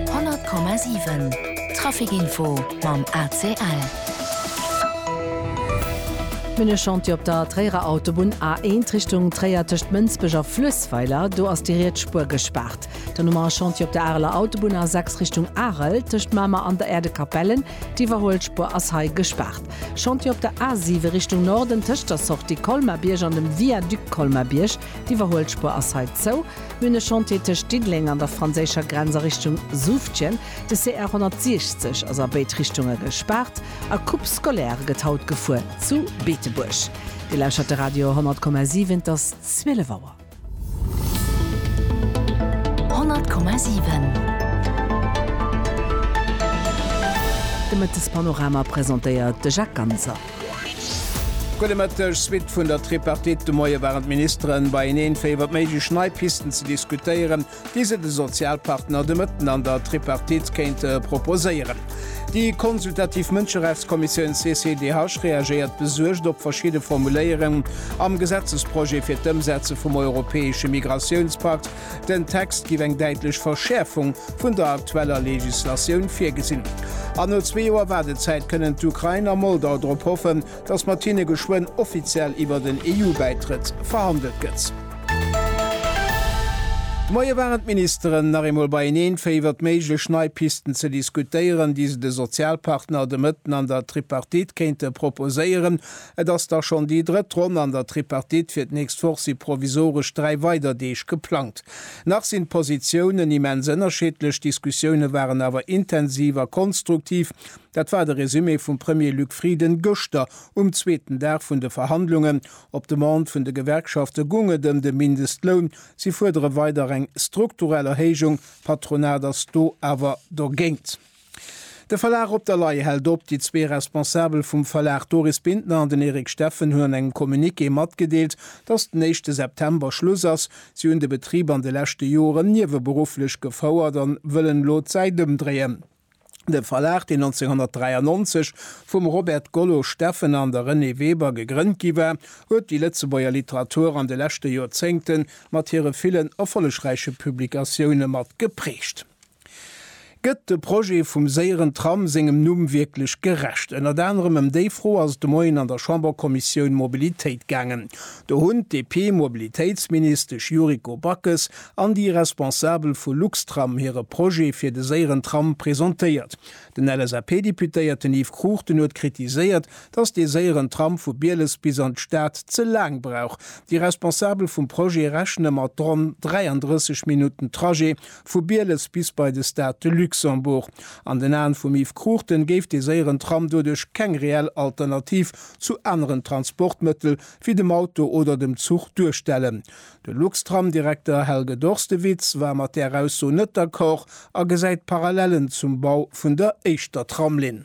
100,7 Trafic Info mam ACL. Minechantier op der Tréierer Autobunn A1 Richtung Tréier tëscht Mënsbech a Fluessweiler, do ass déi riets Spuer gespaart. Dann hu mer e Chantier op der Areler Autobunn A6 Richtung Arel tëscht Mamer an der Äerdekapellen, d'Iwwerhuelspuer ass hei gespaart. Chantier op der A7 Richtung Norden tëscht der Sortie Colmar-Bierg an dem Viaduc Colmar-Bierg. D'Iwwerhuelspur ass hei zou. Mir hunn e Chantier tëscht Diddeleng an der franséischer Grenz a Richtung Souvdtjen. De CR 160 ass a béid Richtunge gespaart. A Coupe scolaire gëtt haut gefuer zu Beetebuerg. Dir lauschert de Radio 100,7. Et ass 12 Auer. 100,7 De Mëttespanorama presentéiert de Jacques Ganser. Gudde Mëtteg. Suite vun der Tripartite de Moie waren d'Ministeren beieneen, fir iwwer méiglech nei Pisten ze diskutéieren, déi se de Sozialpartner de Mëtten an der Tripartite kéinte proposéieren. Déi consultativ Mënscherechtskommissioun CCDH reagéiert besuergt op verschidde Formuléierungen am Gesetzesprojet fir d'Ëmsetze vum europäesche Migratiounspakt, Den Text giff eng däitlech Verschäerfung vun der aktueller Legislatioun virgesinn. An no zwee Joer Waardezäit kënnen d'Ukrain a Moldau drop hoffen, datt mat hinne geschwënn offiziell iwwer den EU-Bäitrëtt verhandelt gëtt. De Moie waren d'Ministeren nach eemol beieneen, fir iwwert méiglech nei Pisten ze diskutéieren, déi se de Sozialpartner de Mëtten an der Tripartite kéinte proposéieren. Et ass da schonn déi drëtt Ronn an der Tripartite. Fir d'nächst Woch si provisoresch dräi weider Deeg geplangt. Nach sinn d'Positiounen immens ënnerscheedlech, d'Diskussioune waren awer intensiv a konstruktiv. Dat war de Resumé vum Premier Luc Frieden gëschter um zweeten Dag vun de Verhandlungen. Op Demande vun de Gewerkschafte goung et ëm de Mindestloun. Si fuerdere weider eng strukturell Erhéijung. D'Patronat ass do awer dogéint. De Verlag Op der Lay hält op. Déi zwee Responsabel vum Verlag, d'Doris Bintner an den Eric Steffen, hunn an engem Communiqué matgedeelt, datt den éischte September Schluss ass. Si hunn de Betrib an de leschte Joren nieweberufflech gefouert an wëllen elo d'Säit ëmdréien. De Verlag, deen 1993 vum Robert Gollo Steffen an der Renée Weber gegrënnt gi war, huet déi Lëtzebuerger Literatur an de leschte Joerzéngte mat hire villen erfollegräiche Publikatioune mat geprägt. Gëtt de Projet vum séieren Tram sengem Numm wierklech gerecht? Ënnert anerem ëm déi Fro ass et de Moien an der Chamberkommissioun Mobilitéit gaangen. Do hunn d'DP-Mobilitéitsministesch Yuriko Backes an déi Responsabel vu Luxtram hire Projet fir de séieren Tram presentéiert. Den LSAP-Deputéierten Yves Cruchten huet kritiséiert, datt dee séieren Tram vu Bieles bis an d'Stad ze laang brauch. Déi Responsabel vum Projet rechne mat ronn 33 Minutten Trajet Vu Bieles bis bei de Stade de Luxembourg. An den Aen vum Yves Cruchten géif dee séieren Tram doduerch keng reell Alternativ zu aneren Transportmëttel wéi dem Auto oder dem Zuch duerstellen. De Luxtram-Direkter Helge Dorstewitz war mat där Ausso net d'accord a gesäit Parallellen zum Bau vun der éischter Tramlinn.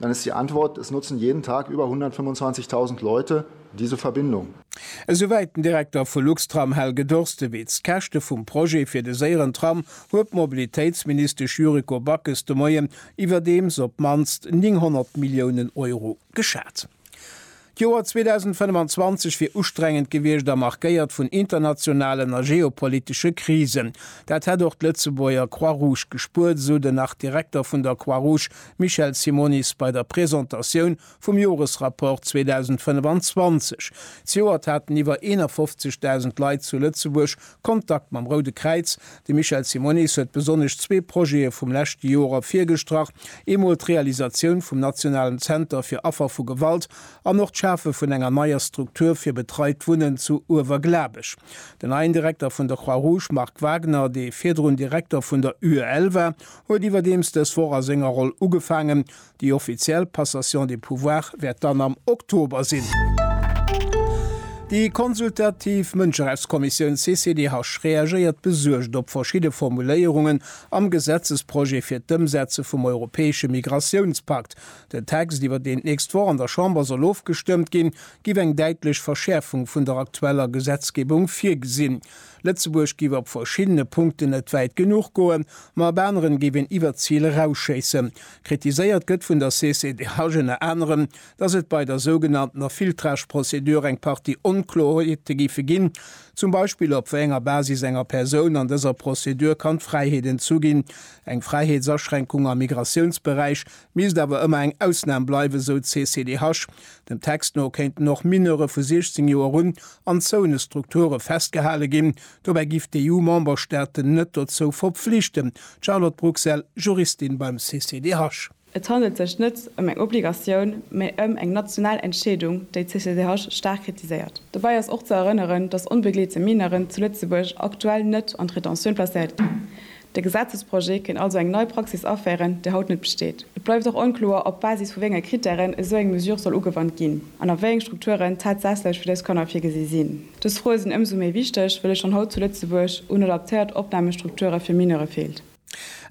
Dann ist die Antwort, Es nutzen jeden Tag über 125.000 Leute diese Verbindung. Esouwäit den Direkter vu Luxtram Helge Dorstewitz. D'Käschte vum Projet fir de séieren Tram huet d'Mobilitéitsministesch Yuriko Backes de Moien iwwerdeems op d'mannst 900 Milliounen Euro geschat. D'Joer 2025 wier ustrengend gewiescht a markéiert vun internationalen a geopolitesche Krisen. Dat hätt och d'Lëtzebuerger Croix-Rouge gespuert, esou den Artdirekter vun der Croix-Rouge Michel Simonis bei der Presentatioun vum Joresrapport 2025. Zejoert haten iwwer 51.000 Leit zu Lëtzebuerg Kontakt mam Roude Kräiz, De Michel Simonis huet besonnesch zwee Projete vum leschte Joer ervirgestrach, eemol d'Realisatioun vum nationalen Zenter fir Affer vu Gewalt an och d'Schafe vun enger neier Struktur fir betreit Wunnen zu Uewerglabech. Den neien Direkter vun der Croix-Rouge, Marc Wagner, dee virdrun Direkter vun der UEL war, huet iwwerdeems dës Woch a senger Roll ugefaangen. Déi offiziell Passation de pouvoir wäert dann am Oktober sinn. Déi consultativ Mënscherechtskommissioun CCDH reagéiert besuergt op verschidde Formuléierungen am Gesetzesprojet fir d'Ëmsetze vum europäesche Migratiounspakt. Den Text, iwwer deen d'nächst Woch an der Chamber soll ofgestëmmt ginn, géif eng däitlech Verschäerfung vun der aktueller Gesetzgebung virgesinn. Lëtzebuerg géif op verschiddene Punkten net wäit genuch goen, ma op aneren géif een iwwert d'Zil erausschéissen. Kritiséiert gëtt vun der CCDH ënner anerem, datt et bei der sougenanntener Filtrage-Prozedur eng Partie Onkloerheete géife ginn, zum Beispill op wéi enger Basis enger Persoun an dëser Prozedur kann d'Fräiheet entzu ginn. Eng Fräiheetsaschränkung am Migratiounsberäich misst awer ëmmer eng Ausnam bleiwen, esou d'CCDH. Dem Text no kéinten och Mineure vu 16 Joer un an Zouenestrukture festgehale ginn, Dobäi giff d'EU-Memberstaaten net dozou verpflichten. D'Charlotte Bruxelles, Juristin beim CCDH. Et handelt sech net ëm eng Obligatioun, mä ëm eng national Entscheedung, déi d'CCDH staark kritiséiert. Dobäi ass och ze erënneren, datt onbegleete Mineuren zu Lëtzebuerg aktuell net an d'Rétention placéiert ginn. De Gesetzesprojet kéint also eng nei Praxis aféieren, déi haut net besteet. Et bleift och onkloer, op Basis vu wéi enge Krittären esou eng Mesure soll ugewannt ginn an a wéi eng Strukturen tatsächlech fir dës Kanner virgesi sinn. Dës Froe sinn ëmsou méi wichteg, wëll et schonn haut zu Lëtzebuerg un adaptéiert Opnahmestrukture fir Mineure feelt.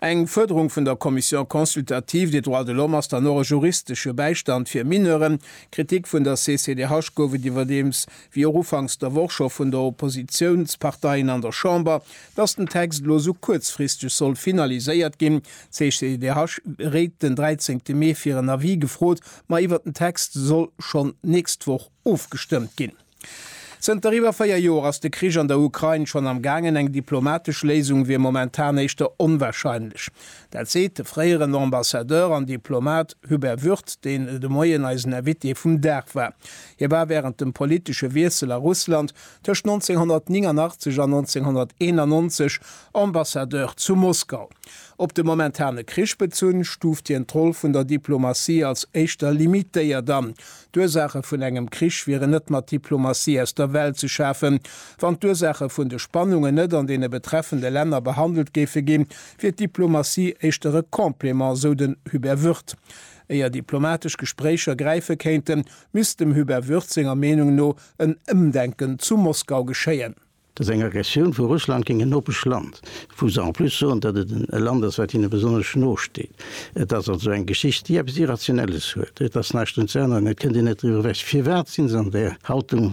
Eng Fuerderung vun der Commission consultative des droits de l'homme ass dann och e juristesche Bäistand fir Mineuren. Kritik vun der CCDH gouf et iwwerdeems wéi och ufanks der Woch scho vun der Oppositiounsparteien an der Chamber, dass den Text elo esou kuerzfristeg soll finaliséiert ginn. D'CGDH réit den 13 Mee fir en Avis gefrot, ma iwwert den Text soll schonn d'nächst Woch ofgestëmmt ginn. Zënter iwwer véier Joer ass de Krich an der Ukrain schonn am gaangen, eng diplomatesch Léisung wier momentan éischter onwarscheinlech. Dat seet de fréieren Ambassadeur an Diplomat Hubert Würth, deen de Moien eisen Invité vum Dag war. Hie war wärend dem politesche Wiessel a Russland tëscht 1989 an 1991 Ambassadeur zu Moskau. Op de momentane Krich bezunn, stuuft hien d'Roll vun der Diplomatie als éischter limitéiert an. D'Ursaache vun engem Krich wieren net mat Diplomatie aus der Welt ze schafen. Wann d'Ursaache vun de Spannungen net an deene betreffende Länner behandelt géife ginn, wier d'Diplomatie éischter e Complément, sou den Hubert Wirth. Éier diplomatesch Gespréicher gräife kéinten, misst dem Hubert Würth senger Meenung no en Ëmdenken zu Moskau geschéien. Datt eng Aggressioun vu Russland géint en nopesch Land, wou se en plus soen, datt et e Land ass, wat hinne besonnesch no steet, et ass also eng Geschicht, déi eppes Irrationelles huet. Et ass näischt drun ze änneren, et kënnt een net driwwer ewech. Firwat si se an där Haltung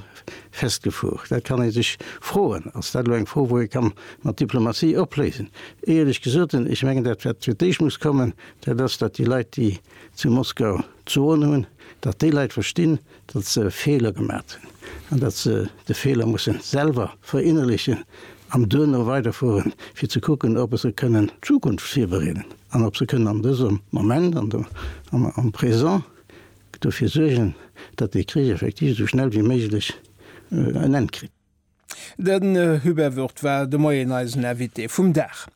festgefuer? Dat kann ee sech froen. Ass dat elo eng Fro, wou ee ka mat Diplomatie opléisen? Éierlech gesot, ech mengen, dat wat fir d'éischt muss kommen, Dat ass, datt déi Leit, déi zu Moskau d'Soen hunn, datt déi Leit verstinn, datt se Feeler gemat hunn an datt se de Feeler musse selwer verinnerlechen an duerno weiderfueren, fir ze kucken, ob se kënnen d'Zukunft virbereeden an ob se kënnen an dësem Moment, am Présent, dofir suergen, datt dee Krich effektiv esou schnell wéi méiglech en Enn kritt. Den Hubert Wirth war de Moien eisen Invité vum Dag.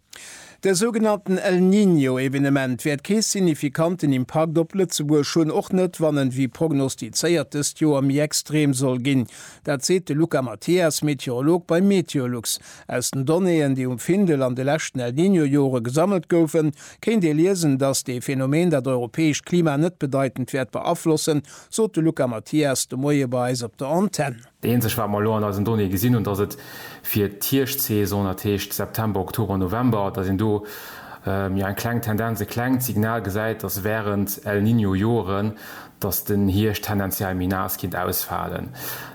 De sougenannten El Niño Evenement wäert kee signifikanten Impakt op Lëtzebuerg hunn, och net wann en wéi prognostizéiert dëst Joer méi extrem soll ginn. Dat seet de Luca Mathias, Meteorolog bei Meteolux. Aus den Donnéeën, déi um Findel an de leschten El Niño Jore gesammelt goufen, kéint ee liesen, datt dee Phänomen dat europäescht Klima net bedeitend wäert beaflossen, sot de Luca Mathias de Moie bei eis op der Antenn. Déi eenzeg wat mer elo an eisen Donnéeë gesinn hunn, dass et fir d'Hierschtsaison, dat heescht September, Oktober, November, dass een do jo eng kleng Tendenz, e klengt Signal gesäit, dass während El Niño Joren, dass den Hierscht tendenziell méi naass kinnt ausfalen.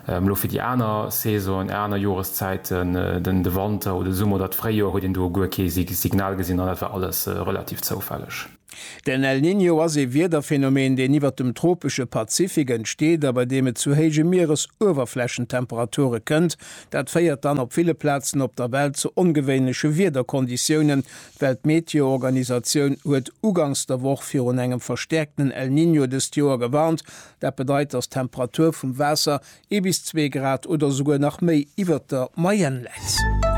Elo fir déi aner Saisonen, aner Joreszäiten, den de Wanter oder de Summer oder d'Fréijoer, huet een do guer kee Signal gesinn an dat war alles relativ zoufälleg. Den El Niño ass ee Wiederphänomen, deen iwwert dem tropesche Pazifik entsteet a bei deem et zu héije Mieresuewerflächentemperature kënnt. Dat féiert dann op ville Plazen op der Welt zu ongewéinleche Wiederkonditiounen. D'Weltmeteoorganisatioun huet ugangs der Woch virun engem verstäerkten El Niño dëst Joer gewarnt. Dat bedeit, datt d'Temperatur vum Waasser Ee bis zwee Grad oder esouguer nach méi iwwert der Moyenne läit.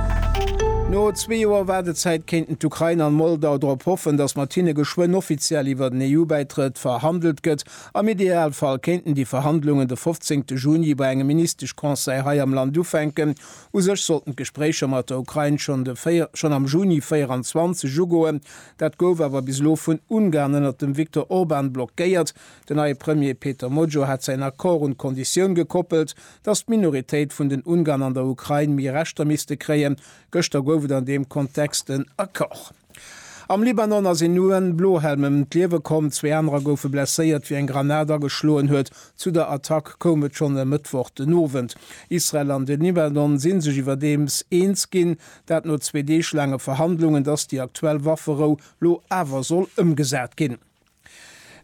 No zwee Joer Waardezäit kéinten d'Ukrain an Moldau drop hoffen, datt mat hinne geschwënn offiziell iwwert en EU-Bäitrëtt verhandelt gëtt. Am Idealfall kéinten déi Verhandlungen de 15 Juni bei engem Ministesch-Conseil hei am Land ufänken. U sech sollten d'Gespréicher mat der Ukrain schonn de schonn am Juni 24 ugoen. Dat gouf awer bis elo vun Ungarn ënnert dem Viktor Orban blockéiert. Den neie Premier Peter Mojor hat säin Accord un d'Konditioun gekoppelt, datt d'Minoritéit vun den Ungarn an der Ukrain méi Rechter misste kréien. Gëschter gouf et an deem Kontext en Accord. Am Libanon ass een UN Blohelm ëm d'Liewe komm, zwee anerer goufe blesséiert, wéi eng Granat ageschloen huet. Zu der Attack koum et schonn e Mëttwoch den Owend. Israel an de Libanon si sech iwwerdeems eens ginn, dat no zwee Deeg laange Verhandlungen, datt déi aktuell Wafferou lo awer soll ëmgesat ginn.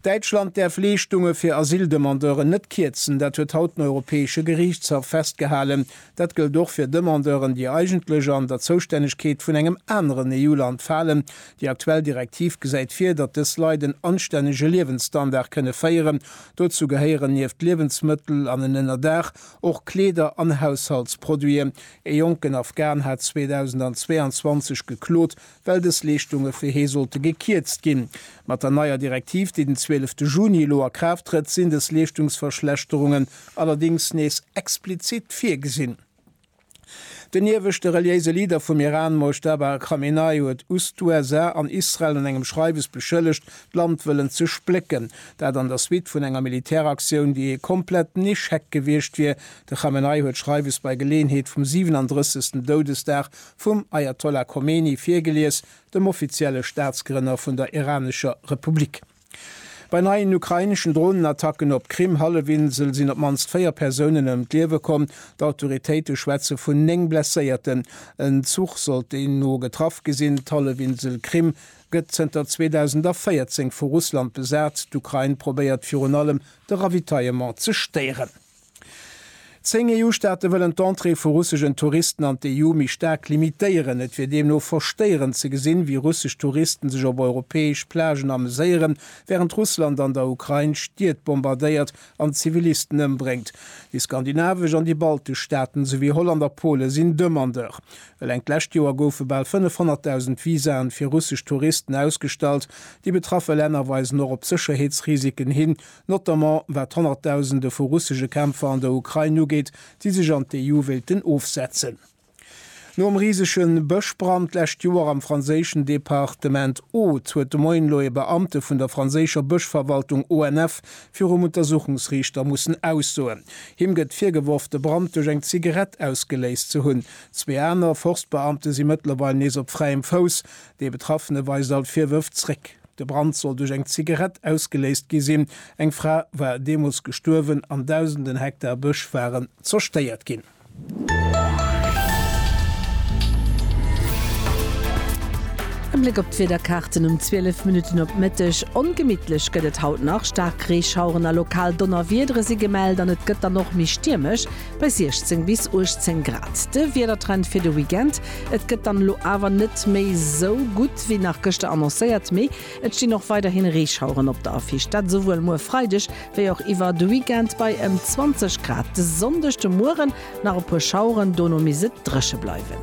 Däitschland däerf Leeschtunge fir Asyldemandeuren net kierzen. Dat huet haut den Europäesche Geriichtshaff festgehalen. Dat gëllt och fir Demandeuren, déi eigentlech an der Zoustännegkeet vun engem aneren EU-Land falen. Déi aktuell Direktiv gesäit vir, datt dës Leit en anstännege Liewensstandard kënne féieren. Dozou gehéieren nieft Liewensmëttel an en Ënnerdaach och Kleeder an Haushaltsproduiten. Ee jonken Afghan hat 2022 geklot, well dës Leeschtunge fir hee sollte gekierzt ginn. Mat der neier Direktiv, déi den 12 Juni elo a Kraaft trëtt, sinn dës Leeschtungsverschlechterungen allerdéngs nees explizit virgesinn. Den ieweschte reliéise Leader vum Iran, Mojtaba Khamenei, huet us d'USA an Israel an engem Schreiwes beschëllegt, d'Land wëllen ze splécken. Dat an der Suite vun enger Militäraktioun, déi ee kompletten Echec gewiescht wier. De Khamenei huet d'Schreiwes bei Geleeënheet vum 37. Doudesdag Vum Ajatollah Khomeini virgelies, dem offizielle Staatsgrënner vun der iranescher Republik. Bei neien ukraineschen Dronenattacken op d'Krim-Hallefinsel sinn op d'mannst véier Persounen ëm d'Liewe komm. D'Autoritéite schwätze vun néng Blesséierten. En Zuch soll deemno getraff gi sinn. D'Hallefinsel Krim gëtt zënter 2014 vu Russland besat. D'Ukrain probéiert virun allem de Ravitaillement ze stéieren. Zéng EU-Staate wëllen d'Entrée vu russeschen Touristen an d'EU méi staark limitéieren. Et wier deemno verstéierend ze gesinn, wéi russesch Touristen sech op europäesch Plagen ameséieren, wärend Russland an der Ukrain Stied bombardéiert an Zivilisten ëmbréngt. Déi skandinavesch an déi baltesch Staaten, souwéi Holland a Pole sinn Demandeur. Eleng d'lescht Joer goufe bal 500.000 Visaen fir russesch Touristen ausgestallt. Déi betraffe Länner weisen och op Sécherheetsrisiken hin, notamment wat honnertdausende vu russesche Kämpfer an der Ukrain ugeet, déi sech an d'EU wéilten ofsetzen. Nom risege Bëschbrand d'lescht Joer am franséischen Departement Aude huet de Moien elo e Beamte vun der franséischer Bëschverwaltung ONF virum Untersuchungsriichter mussen aussoen. Him gëtt virgeworf, de Brand duerch eng Zigarett ausgeléist ze hunn. Zwee aner Forstbeamte si mëttlerweil nees op fräiem Fouss. Dee Betraffene weist all d'Virwërf zréck. De Brand soll duerch eng Zigarett ausgeléist gi sinn. Eng Fra war deemools gestuerwen an dausenden Hektar Bësch waren zerstéiert ginn. E Bléck op d'Wiederkaarten um 12 Minutten op Mëtteg, Ongemittlech gëtt et haut nach, Staarkreeschaueren a lokal Donnerwiedere si gemellt an et gëtt dann och méi stiermesch. Bei 16 bis 18 Grad de Wiedertrend fir de Weekend. Et gëtt dann elo awer net méi esou gutt wéi nach gëschter annoncéiert, mee et stinn och weiderhin Reeschaueren op der Affiche. Dat esouwuel muer Freideg wéi och iwwer de Weekend bei ëm 20 Grad. De Sonndeg de Mueren nach e puer Schaueren, dono misst et dréche bleiwen.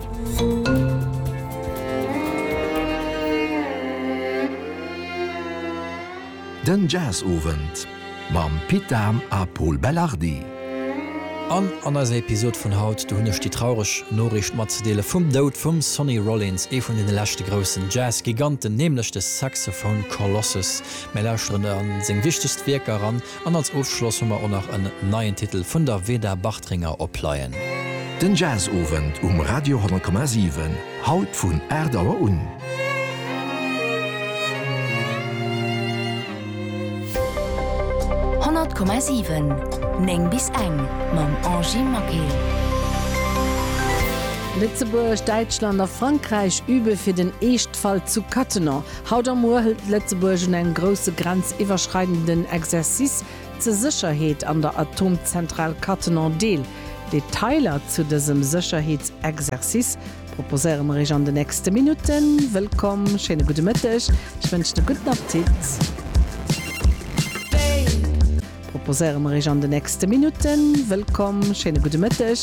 Den Jazz-Owend. Mam Pit Dahm a Pol Belardi. An an eiser Episod vun haut, do hunn ech déi traureg Noriicht matzedeele vum Doud vum Sonny Rollins, ee vun deene leschte groussen Jazz-Giganten, nämlech de Saxophone Colossus. Mir lauschteren a seng wichtegst Wierker eran an als Ofschloss hu mer och nach en neien Titel vun der Veda Bartringer opleien. Den Jazzowend um Radio 100,7. Haut vun 8 Auer un. Honnert Komma siwen, néng bis eng, mam Angie Maquet. Lëtzebuerg, Däitschland a Frankräich übe fir den Eeschtfall zu Cattenom. Haut a muer hëlt Lëtzebuerg un engem grousse grenziwwerschreidenden Exercice ze Sécherheet an der Atomzentral Cattenom deel. Detailer zu dësem Sécherheetsexercice proposéieren mer iech an de nächste Minutten. Wëllkomm, schéine gudde Mëtteg, ech wënschen e gudden Appetit. Proposéieren mer iech an de nächste Minutten. Wëllkomm, schéine gudde Mëtteg.